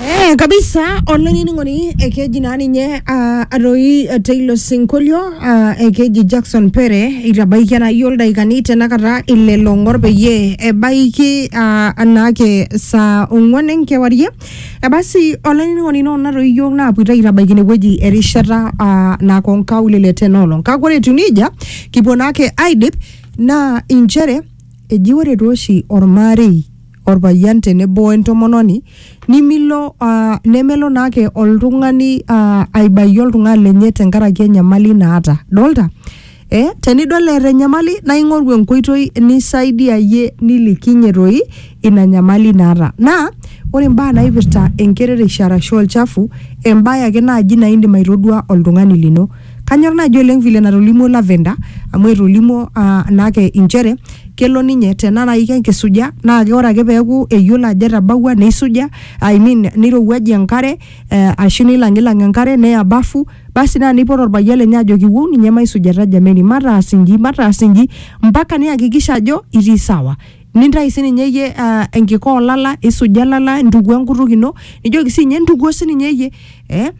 Eh, kabisa olainining'oni ekeji naa ninye ah, atoi eh, teilo sinkolio ah, ekeji jackson pere itabaikia naayie oldaikani tenakata ile long'or peyie ebaiki ah, anaake saa ong'uan enkewarie ebasi olainining'oni noo natoi iyiok naapuoita aitabaiki inewueji erishata ah, nako nkaulele tenoolong kake ore etiu nejia kipuo naake aidip naa inchere eji ore tooshi ormarei orpayian tenebo wentomononi nimilo uh, nemelo naake oltung'ani uh, aibayie oltung'ani lenye tenkaraki enyamali naata dolta eh, tenidol eeta enyamali naa ing'oru enkoitoi nisaidiayie nilikinye toi ina nyamali naata naa ore imbaa naipirta enkerereisho arashu olchafu embaye ake naaji naa indim aitodua oltung'ani lino Kanyor naaji oleng vile natolimuo Lavender amu etolimuo uh, naake inchere kelo ninye tena nai kenkisuja naa ke ore ake peeku eyiolo ajo etabawua neisuja I mean nirowuajie enkare eh, ashu nilang'ilang enkare neya bafu basi naa neipot orpayian lenye ajoki wou ninye maisujata jameni mataas inji mataas inji mpaka niyakikisha ajo itii sawa nintai sininye iyie uh, enkika olala isuja ilala intukuo enkutuk ino nijoki siinye intukuo sininye iyie eh,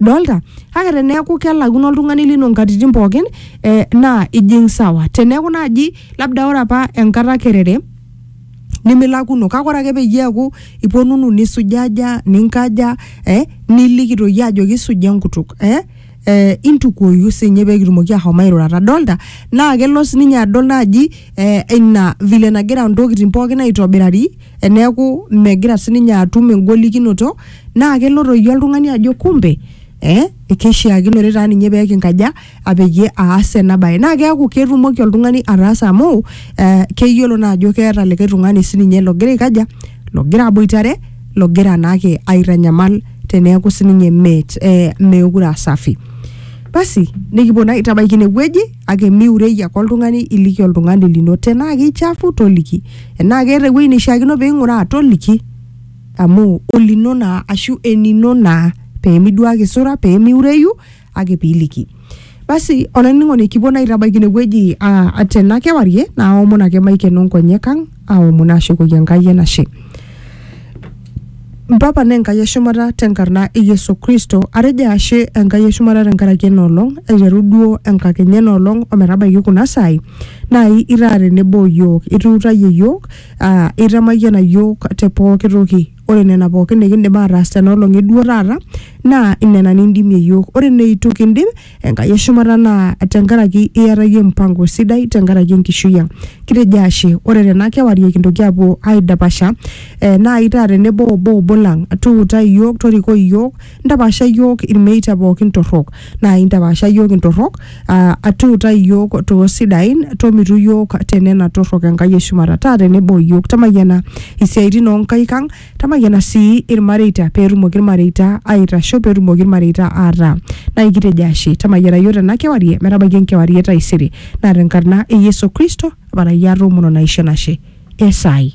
dolta kake teneeku kelakuno oltung'ani lino nkatitin pookin eh, naa ijing sawa teneeku naaji labda ore apa enkata kerere nimilakuno kake ore ake peyie eeku iponunu nisujaja ninkaja eh, niliki toi ajoki suja enkutuk eh, eh, intukuoyu sinye pekitumoki ahom airurata dolta naa kelo sininye adol naaji eh, ina vile nagira ntokitin pookin aitobirari eneeku megira sininye atum engolikinoto naa kelo toi oltung'ani ajo kumbe eh, keishiakinore taa ninye pee kinkaja apeyie aas ena baye naa keeku ketumoki oltung'ani ataasa amu eh, keyiolo naa ajo keeta likae tung'ani sininye logira aikaja logira aboitare logira naake aitanyamal teneeku sininye meet eh, meekure asafi basi nikipuo naa aitabaiki inewueji kake miurei ake oltung'ani iliki oltung'ani lino tenaa keichafu toliki enaa keeta ewueji neishiakino peing'uraa toliki amu olino naa ashu enino naa peemiduaki sura peemiureyu ake piiliki basi olainining'oni kipuo naa aitabaiki inewueji ah, tena kewarie naaomon ake maikeno nkonyek ang aomon aashukoki Enkai enashe. Mpapa naa Enkai eshumata tenkarna e Yesu Kristo, atejo ashe Enkai eshumata tenkaraki ena olong, aiteru duo enkakenya ena olong ometabaiki kuna saai, naai itaa tenebo iyiook, ituutayie iyiook, aa itamayiana iyiook te pooki toki. Ore nena pooki nikindim aataas tena olong e duo taata naa nena nindimie iyiook. Ore neitu kindim Enkai eshumata naa tenkaraki iata iyie mpango sidai tenkaraki enkishui ang. Kitejo ashe ore tena kewarie kintoki apuo aidapasha eh, naai taa tenebo obo obo lang tuutai iyiook torikoi iyiook ntapaasha iyiook ilmeita pookin torrok naai ntapaasha iyiook intorrok ah, tuutai iyiook toosidain tomitu iyiook tenena torrok Enkai eshumata taa tenebo iyiook tamayiana isiaitin oonkaik ang Tamayiana sii ilmareita pee etumoki ilmareita aaitasho pee etumoki ilmareita aataa. Naa ekitejo ashe. Tamayiana iyiook tena kewarie metabaiki enkewarie e taisere. Naa tenkarna e Yesu Kristo aparai atoomon o naisho enashe. Esaai.